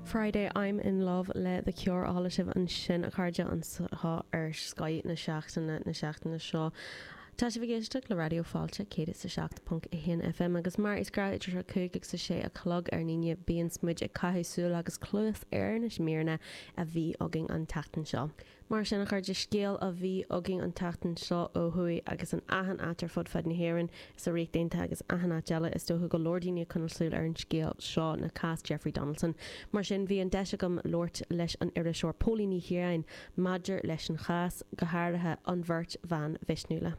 Friday I'm in love le The Cure á sheinm ansin a chairde anseo ar Scoth na Seachtaine na seachtaine seo. Tá sibh ag éisteacht le Raidió Fáilte 107.1 FM agus mar is gnáth idir a 5 agus a 6 a chlog ar an Aoine bíonns muid ag caitheamh súil agus cluas ar na míreanna a bhí againn an tseachtain seo. Mar sin, a chairde, scéal a bhí againn an tseachtain seo ó thuaidh agus in achan áit ar fud fad na hÉireann is sa Ríocht Aontaithe agus achan áit eile is dócha go leor daoine ag coinneáil súil ar an scéal seo ná cás Jeffrey Donaldson. Mar sin, bhí an deis agam labhairt leis an iriseoir Póilín Ní Chiaráin maidir leis an chás, go háirithe an bheirt bhan mhisniúla.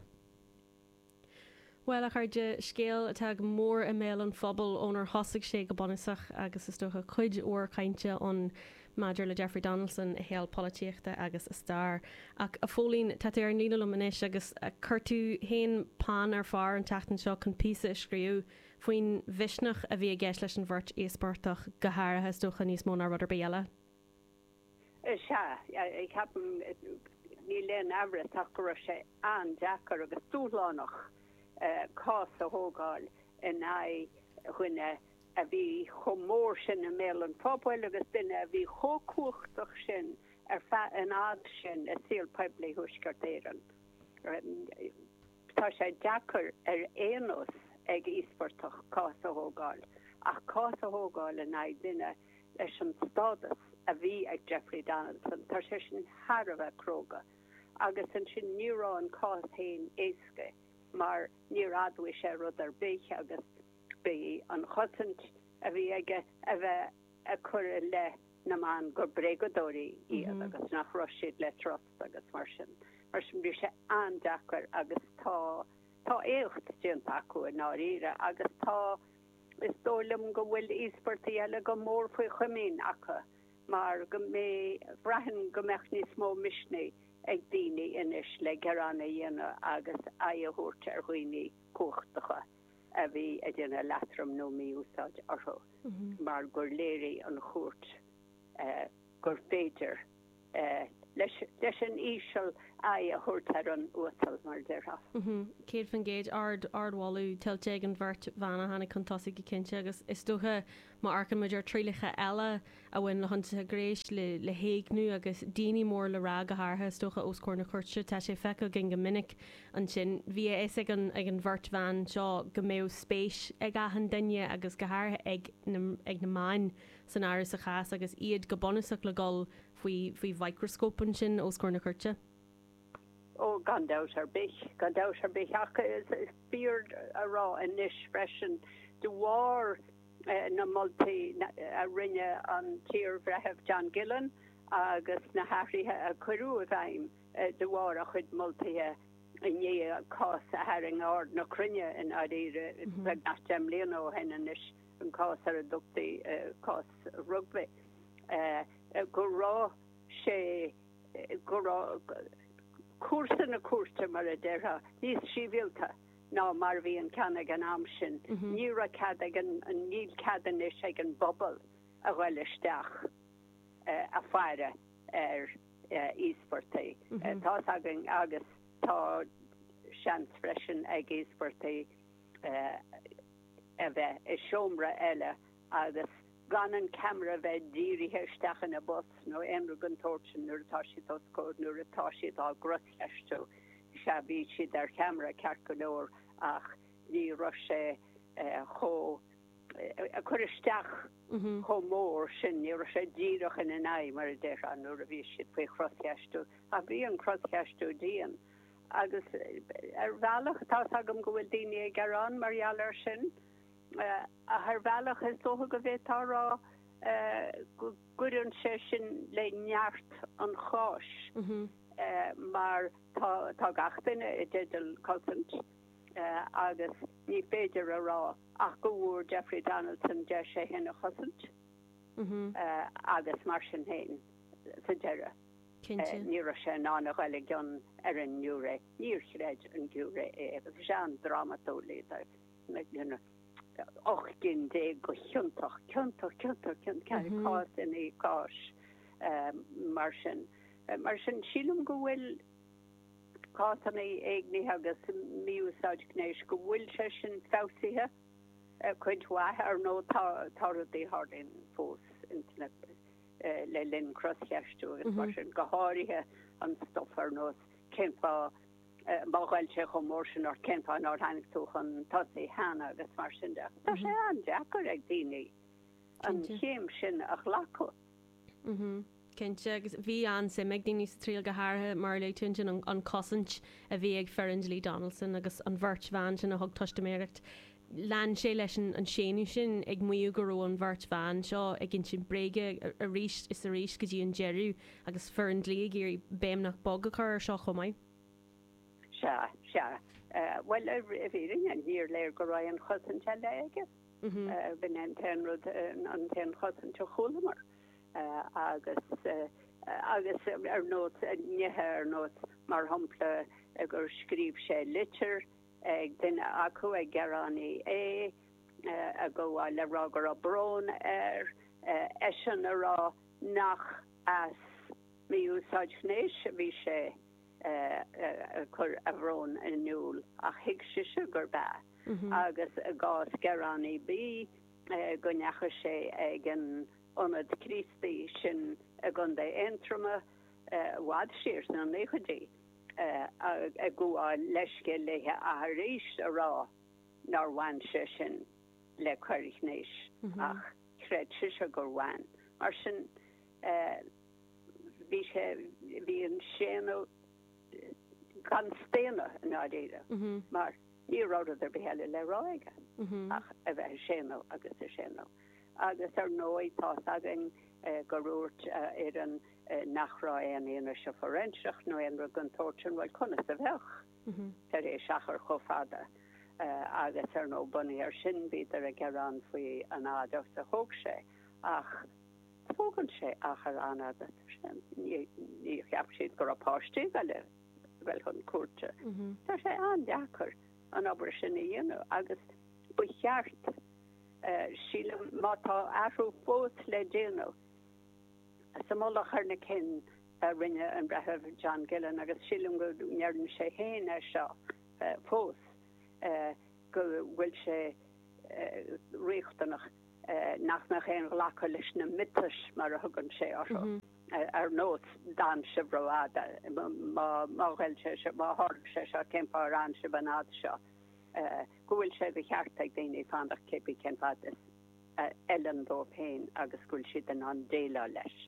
Bhuel, a chairde, scéal atá go mór i mbéal an phobail ónar thosaigh sé go bunúsach agus is dócha cuid mhór cainte ann maidir le Jeffrey Donaldson, a shaol polaitíochta agus a stair. Ach, a Phóilín, tá tú ar an líne liom anois agus chuir tú féin peann ar pár an tseachtain seo chun píosa a scríobh faoin mhisneach a bhí i gceist leis an bheirt íospartach, go háirithe, is dócha, níos mó ná rud ar bith eile. Sea, ceapaim, níl aon aimhreas ach go raibh sé an-deacair agus dúshlánach cás a thógáil in aghaidh duine a bhí chomh mór sin i mbéal an phobail agus duine a bhí chomh cumhachtach sin ar feadh an fhad sin i saol poiblí Thuaisceart Éireann. Tá sé deacair ar aon nós ag íospartach cás a thógáil, ach cás a thógáil in aghaidh duine leis an stádas a bhí ag Jeffrey Donaldson, tá sé sin thar a bheith cróga. Agus ansin ní raibh an cás féin éasca mar níor admhaigh sé rud ar bith agus bhí an chosaint a bhí aige a bheith ag cur i leith na mban gur bréagadóirí iad agus nach raibh siad le trust. Agus mar sin bhí sé an-deacair agus tá tá éacht déanta acu i ndáiríre agus tá is dóigh liom go bhfuil íospartaigh eile go mór faoi chomaoin acu mar go mb' braitheann go mbeadh níos mó misnigh ag daoine anois le gearán a dhéanamh agus aghaidh a thabhairt ar dhaoine cumhachtacha a bhí ag déanamh leatrom nó mí-úsáid orthu mar gur léirigh an chúirt gur féidir leis an íseal aghaidh a thabhairt ar an uasal, mar a déarfá. 100%, ardmholadh tuillte ag an bheirt bhan a tháinig chun tosaigh go cinnte agus is dócha má amharcann muid ar trialacha eile a bhain le hionsaithe gnéis, le héigniú agus daoine mór le rá go háirithe is dócha os comhair na cúirte, tá sé feicthe againn go minic ansin. Bhí a fhios ag an ag an bheirt bhan seo go mbeadh spéis ag achan duine agus go háirithe ag na ag na meáin, san áireamh sa chás agus iad go bunúsach le dhul faoi mhicreascóp ansin os comhair na cúirte? Ó, gan dabht ar bith, gan dabht ar bith. Ach is fíor a rá anois freisin, de bharr na moltaí a rinne an t-iarBhreitheamh John Gillen agus na hathruithe a cuireadh i bhfeidhm de bharr a chuid moltaí i ndiaidh cás a tharraing aird na cruinne i ndáiríre beagnach deich mbliana ó shin anois, an cás ar a dtugtaí cás Rugby, go raibh sé, go raibh cúrsa na cúirte, mar a déarfá, níos sibhialta ná mar a bhí an ceann ag an am sin. Ní raibh cead ag an, níl cead anois ag an bpobal a ghoil isteach ag faire ar íospartaigh. Tá's againn agus tá seans freisin ag íospartaigh, a bheith i seomra eile agus gan an ceamara a bheith dírithe isteach ina bpus nó aon rud den tsórt sin nuair atá siad os comhair, nuair atá siad á gcroscheistiú, sea, bhí siad ar cheamara ceart go leor ach ní raibh sé chomh, ag cur isteach chomh mór sin, ní raibh sé díreach ina n-aghaidh mar a déarfá nuair a bhí siad faoi chroscheistiú ach bhí an croscheistiú dian. Agus ar bhealach, tá's agam go bhfuil daoine ag gearán mar gheall air sin, ach ar bhealach is dócha go bhféadfá a rá go gcuireann sé sin le neart an cháis mar tá gach duine i dteideal cosaint agus ní féidir a rá ach go bhfuair Jeffrey Donaldson deis é fhéin a chosaint agus mar sin fhéin sa deireadh. Ní raibh sé in ann a ghoil i gcion ar an ngiúiré. Níor chreid an giúiré é agus bhí sé an-drámatúil, léadar ocht gcinn déag go ciontach, ciontach, ciontach, ciontach, cás i ndiaidh cáis mar sin. Mar sin, sílim go bhfuil cásanna éignithe agus mí-úsáid gnéis, go bhfuil sé sin feabhsaithe cuid mhaith. Ar ndóigh, tá rudaí a tharlaíonn fós ins na. le linn croscheistiú agus mar sin, go háirithe an stuif ar nós cén fáth má ghoill sé chomh mór sin ort, cén fáth nár tháinig tú chun tosaigh cheana agus mar sin de. Tá sé an-deacair ag daoine an chéim sin a ghlacadh. Cinnte agus bhí an-suim ag daoine sa triail go háirithe mar a luaigh tú ansin an chosaint a bhí ag foireann dlí Donaldson agus an bheirt bhan sin a thug teistiméireacht Lean sé leis an séanadh sin, ag maíomh go raibh an bheirt bhan seo ag insint bréige arís is arís go dtí an deireadh agus foireann dlí ag iarraidh béim nach beag a chur air seo chomh maith. Sea, sea. Bhuel, i bhfírinne, níor léir go raibh aon chosaint eile aige. B'in é an t-aon rud, an t-aon chosaint a chualamar. Agus, agus ar nós nithe ar nós, mar shampla, gur scríobh sé litir, ag duine acu ag gearánaí A, ar mhaith leis a rá go raibh brón air, eisean a rá nach as mí-úsáid ghnéis a bhí sé ag cur a bhrón in iúl ach thuig sise gurb ea, agus i gcás gearánaí B, go ndeachaigh sé ag an Ionad Críostaí sin i gContae Aontroma, i bhfad siar sna naochaidí. ag gabháil leithscéil léithe ach arís a rá nár bhain sé sin le coir ghnéis, ach chreid sise gur bhain. Mar sin, bhí sé, bhí an séanadh gan staonadh i ndáiríre, mar ní raibh rud ar bith eile le rá aige ach a bheith ag séanadh agus ag séanadh. Agus ar ndóigh, tá's againn go ndúirt a fhoireann, nach raibh aon fhianaise fhóiréinseach nó aon rud den tsórt sin, bhuel, conas a bheadh tar éis achar chomh fada? Agus ar ndóigh, bunaithe ar sin, bhíodar ag gearán faoi an fhad agus a thóg sé. Ach tógann sé achar an-fhada dar sin. Ní cheapadh siad go raibh páistí le dhul chun cúirte. Tá sé an-deacair an obair sin a dhéanamh agus ba cheart, sílim, má tá athrú fós le déanamh, Sa mholadh ar na cinn a rinne an Breitheamh John Gillen, agus sílim go ndeireann sé féin é seo fós, go bhfuil sé riachtanach nach mbeadh aon ghlacadh leis na miotais, mar a thugann sé orthu, ar nós d'fhan sibh ró-fhada, má ghoill sé seo, má tharla sé seo, cén fáth ar fhan sibh an fhad seo, go bhfuil sé de cheart ag daoine fanacht cé bith cén fad is. a fheileann dóibh féin agus go bhfuil siad in ann déileáil leis.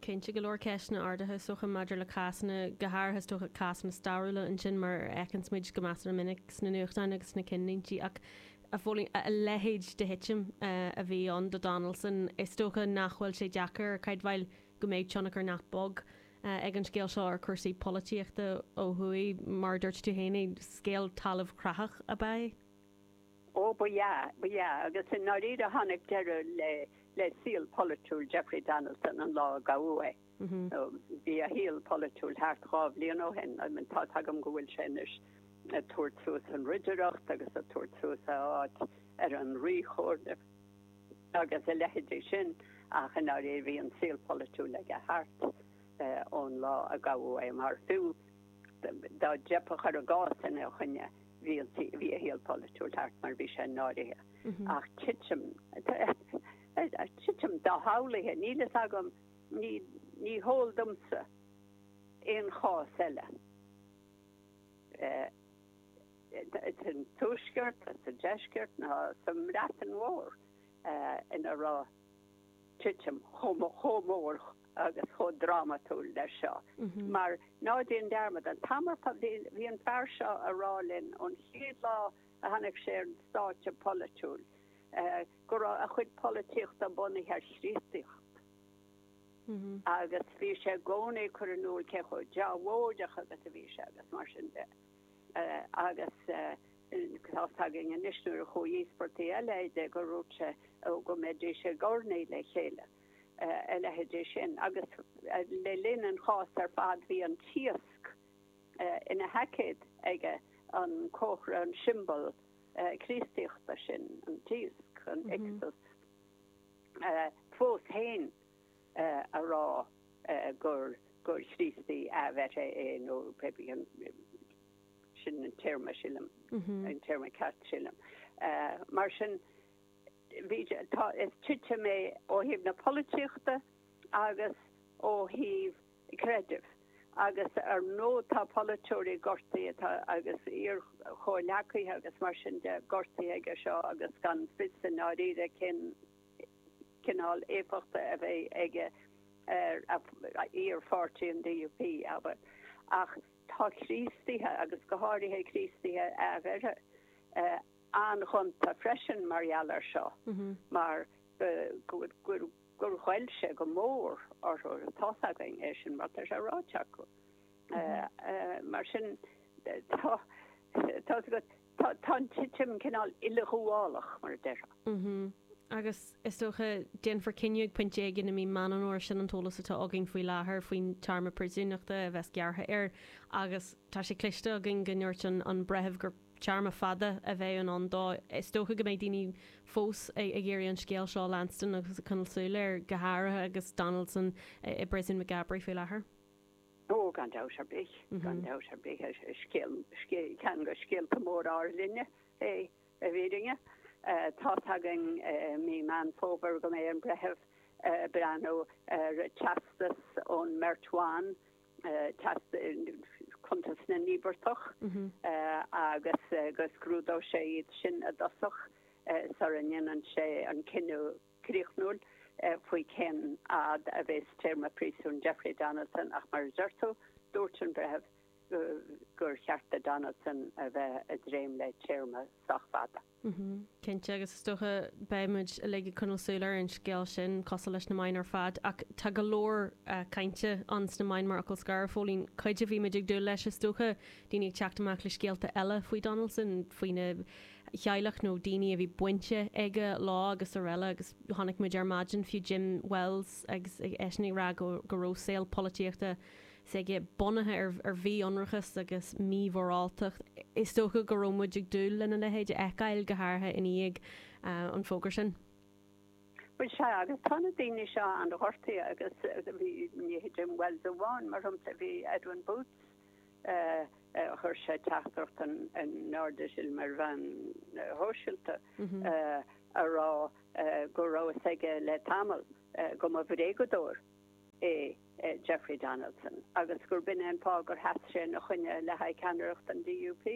Cinnte, go leor ceisteanna ardaithe is dócha maidir le cásanna, go háirithe is dócha cásanna stairiúla ansin mar a fheiceanns muid go measartha minic sna nuachtáin agus sna cinnlíntí ach a Phóla, a leithéid de thitim a bhí ann do Donaldson, is dócha nach bhfuil sé deacair a chreidbheáil go mbeidh tionchar nach beag ag an scéal seo ar chúrsaí polaitíochta ó thuaidh, mar a dúirt tú féin é, scéal talamhchreathach ab ea é. Ó ba ea, ba ea, agus i ndáiríre tháinig deireadh le le saol polaitiúil Jeffrey Donaldson an lá a gabhadh é. Nó bhí a shaol polaitiúil thart dhá bhliain ó shin, tá a fhios agam go bhfuil sé anois ag tabhairt suas an ridireacht agus ag tabhairt suas a áit ar an Ríchomhairle agus a leithidí sin, ach i ndáiríre bhí an saol polaitiúil aige thart ón lá a gabhadh é, mar fiú. dá dteipeadh, cuir i gcás ina choinne, bhí an tí, bhí a shaol polaitiúil thart mar bhí sé náirithe. Ach titim, titim dho-shamhlaithe, níl a fhios agam, ní, ní heol domsa aon chás eile, sa tuaisceart, sa deisceart ná sa mBreatain Mhór, ina raibh. titim chomh mór agus chomh drámatúil leis seo. Mar ná déan dearmad, an t-am ar fad bhí an fear seo ag rá linn, ón chéad lá a tháinig sé ar an stáitse polaitiúil, go raibh a chuid polaitíochta bunaithe ar Chríostaíocht. Agus bhí sé i gcónaí ag cur in iúl cé chomh deabhóideach agus a bhí sé agus mar sin de. Agus Tá's againn anois nuair a chuaigh íospartaigh eile go dtí é go raibh sé nó go mbeidís ag urnaí le chéile, a leithidí sin. Agus le linn an chás ar fad bhí an t-iasc ina sheaicéad aige, an comhartha, an siombal Críostaíochta sin, an t-iasc, an Ichthus. Fós féin ag rá gur Chríostaí athbheirthe é nó pé bith an. Sin an téarma sílim, an téarma ceart sílim. Mar sin, titim é ó thaobh na polaitíochta agus ó thaobh creidimh agus ar ndóigh tá polaiteoirí gortaithe tá agus iarchomhghleacaithe agus mar sin de gortaithe aige seo agus gan fios i ndáiríre cén cineál éifeachta a bheas aige ar iarpháirtí an DUP, abair. Ach Tá Críostaithe, agus go háirithe Críostaithe athbheirthe, an-ghonta freisin mar gheall air seo mar gur ghoill sé go mór orthu. Tá's againn é sin mar tá sé ráite acu. Mar sin, tá's agat. Tá an titim cineál uileghabhálach, mar a déarfá. Mh-mh. Agus, is dócha, déanfar cinneadh ag pointe éigin i mí Mheán Fómhair, sin an t-eolas atá againn faoi láthair, faoin téarma príosúnachta a bheas gearrtha air. Agus tá sé cloiste againn go ndúirt an an Breitheamh gur téarma fada a bheadh i ndán dó. Is dócha go mbeidh daoine fós ag iarraidh an scéal seo a leanstan agus ag coinneáil súil air, go háirithe agus Donaldson i bpríosún Maghaberry faoi láthair. Ó, gan dabht ar bith, gan dabht ar bith. Ceann de scéalta móra ár linne é i bhfírinne. Tá's againn i mí Meán Fómhair go mbeidh an Breitheamh ag breathnú ar teastas ón mbeirt bhan, teastas cuntas na n-íobartach, agus go scrúdóidh sé iad sin i dtosach sara ndéanann sé an cinneadh. críochnúil faoi cén fhad a bheas téarma príosúin Jeffrey Donaldson ach mar a deir tú, dúirt an breitheamh gur cheart do Donaldson a bheith ag dréim le téarma sách fada. Cinnte, agus is dócha beidh muid uilig ag coinneal súil ar an scéal sin, cosúil leis na meáin ar fad. Ach tá go leor cainte ann sna meáin mar fhocal scoir, Phóilín, cuid a bhí muid ag dúil leis is dócha, daoine ag teacht amach le scéalta eile faoi Donaldson, faoina. theaghlach nó daoine a bhí baint aige leo agus araile agus chonaic muid ar maidin fiú Jim Wells agus eisean ag rá go go raibh saol polaitíochta s'aige bunaithe ar ar mhí-ionracas agus mímhoráltacht. Is dócha go raibh muid ag dúil lena leithéid a fheiceáil, go háirithe i ndiaidh an fógra sin. Bhuel, sea, agus tá na daoine seo an-ghortaithe agus bhí ní hé Jim Wells amháin, mar shampla, bhí Edwin Poots, Chuir sé teachtaireacht in airde, sílim, ar mheáin shóisialta ag rá go raibh a fhios aige le tamall go mba bhréagadóir é Jeffrey Donaldson agus gurb in é an fáth gur sheas sé ina choinne le haghaidh ceannaireacht an DUP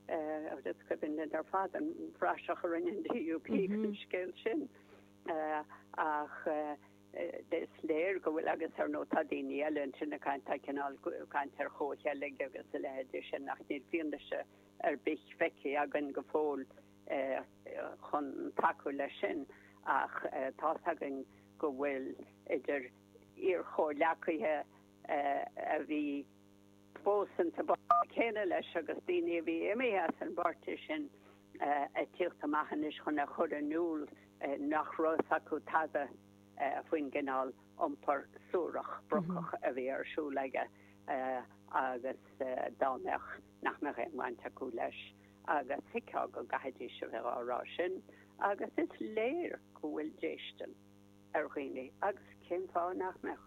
agus is cuimhin linn ar fad an phraiseach a rinne an DUP faoin scéal sin ach, Is léir go bhfuil agus, ar ndóigh, tá daoine eile ansin ag caint, tá cineál ag caint ar chomhcheilg agus a leithéidí de sin ach níl fianaise ar bith feicthe againn go fóill chun tacú leis sin. Ach tá's againn go bhfuil idir iarchomhghleacaithe a bhí. fós sa bpáirtí céanna leis agus daoine a bhí imithe as an bpáirtí sin ag tíocht amach anois chun a chur in iúl nach raibh a fhios acu tada faoin gcineál iompar suarach, brocach a bhí ar siúl aige agus dá mbeadh, nach mbeadh aon bhaint acu leis agus thuigfeá go gcaithfidís a bheith á rá sin agus is léir go bhfuil déistin. ar dhaoine agus cén fáth nach mbeadh?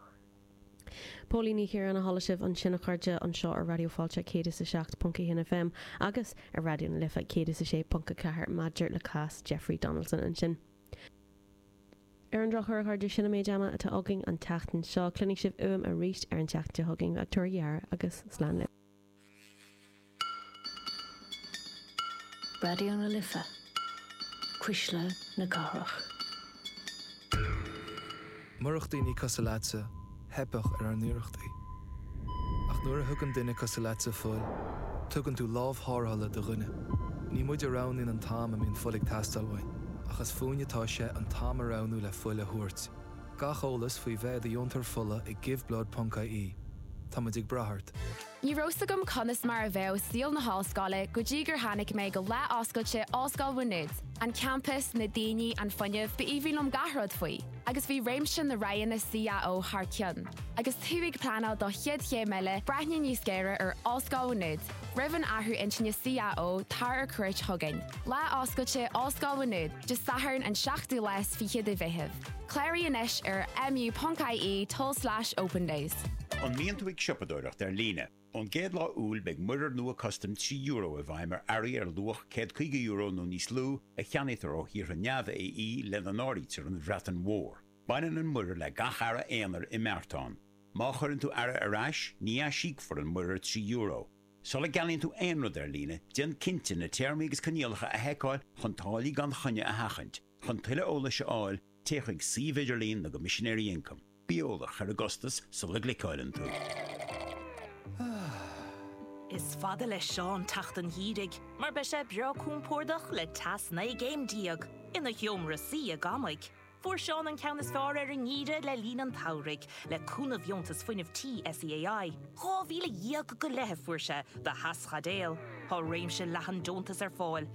Póilín Ní Chiaráin a chuala sibh ansin a chairde anseo ar Raidió Fáilte 107.1 FM agus ar Raidió na Life 106.4 maidir le cás Jeffrey Donaldson ansin. Ar an drochuair a chairde sin an méid ama atá againn an tseachtain seo cluinfidh sibh uaim arís ar an tseachtain seo chugainn. Ach tabhair aire agus slán libh. Raidió na Life, cuisle na cathrach. Murach daoine cosúil leatsa, theipfeadh ar ár n-iarrachtaí. Ach nuair a thugann duine cosúil leatsa fuil, tugann tú lámh thárrthála do dhuine. Ní muid a roghnaíonn an t-am a mbíonn fuil ag teastáil uainn, ach is fúinne atá sé an t-am a roghnú le fuil a thabhairt. Gach eolas faoi bheith i do dheontóir fola ag giveBlood.ie. Táimid ag brath ort. Ní raibh 's agam conas mar a bheadh saol na hollscoile go dtí gur tháinig mé go lá oscailte Ollscoil Mhá Nuad. An campas, na daoine, an fuinneamh, b'aoibhinn liom gach rud faoi. Agus bhí réimse na roghanna CAO thar cionn. Agus tú ag pleanáil do chéad chéim eile, breathnaigh níos géire ar Ollscoil Mhá Nuad. Roimh an athrú intinne CAO, tar ar cuairt chugainn. Lá Oscailte Ollscoil Mhá Nuad, Dé Sathairn an 7ú lá is fiche de Mheitheamh. Cláraigh anois ar mu.ie tulslais opendays. An mbíonn tú ag siopadóireacht ar líne? Ón gcéad lá Iúil beidh muirear nua custaim trí euro i bhfeidhm ar earraí ar luach €150 nó níos lú a cheannaítear ó thíortha neamh-AE, lena n-áirítear an Bhreatain Mhór. Baineann an muirear le gach earra aonair i mbeartán. Má chuireann tú earra ar ais, ní aisíocfar an muirear trí euro. Sula gceannaíonn tú aon rud ar líne, déan cinnte na téarmaí agus coinníollacha a sheiceáil chun táillí gan choinne a sheachaint. Chun tuilleadh eolais a fháil, téigh chuig suíomh idirlín na gCoimisinéirí Ioncaim. Bí eolach ar an gcostas sula gcliceáileann tú. Is fada le Seán teacht an gheimhridh mar beidh sé breá compordach le teas 19 gcéim ina sheomra suí i gCorcaigh. Fuair Seán an ceann is fearr ar an ngeimhreadh le linn an tsamhraidh le cúnamh dheontas fuinnimh tí SEAI. Dhá mhíle dhéag go leith a fuair sé do theaschaidéal. Tá réimse leathan deontas ar fáil.